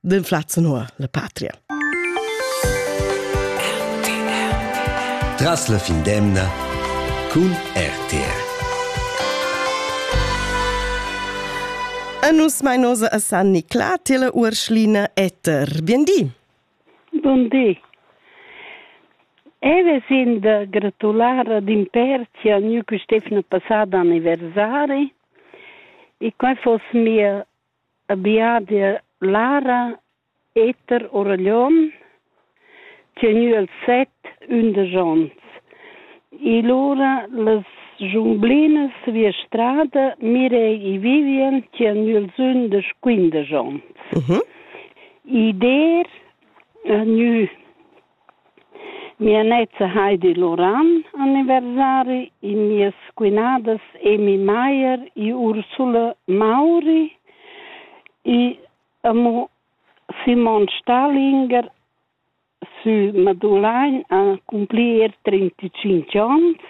den Flatzenhoer la patria. Tras la fin d'emna cun RTR. A nus mainosa a San Nicla, Tele Urschlina Etter. Biendi. Buondì. Eve sind gratular ad in perci a nu Stefano passada anniversari e quai foss mia Abià d'eir Lara, Eter Oraglion, tgnü els set ündesch ons. E lura las giumblinas via strada Mirei e Vivien tgnü els ündesch quindesch ons. Id d'eir gnü Mia neza Heidi Loran anniversari e mias quinadas Amy Maier e Ursula Mauri e amo Simon Stallinger sü Madulain han accumplir trintacinque ons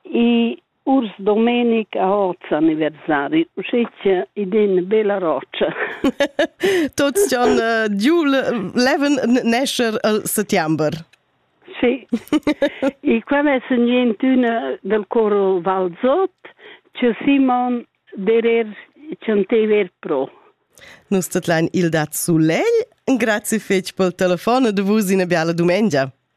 e Urs Domenic ha oz anniversari, uschia id in bella rotscha. Tuts jan uh, giu leven nescher al settember. Sì, e qual è niente una del coro Valzot, c'è Simon Derer Chantever Pro. Nus tetlein il dat sulei. Grazie fetg pel telefon de vus in biala dumengia.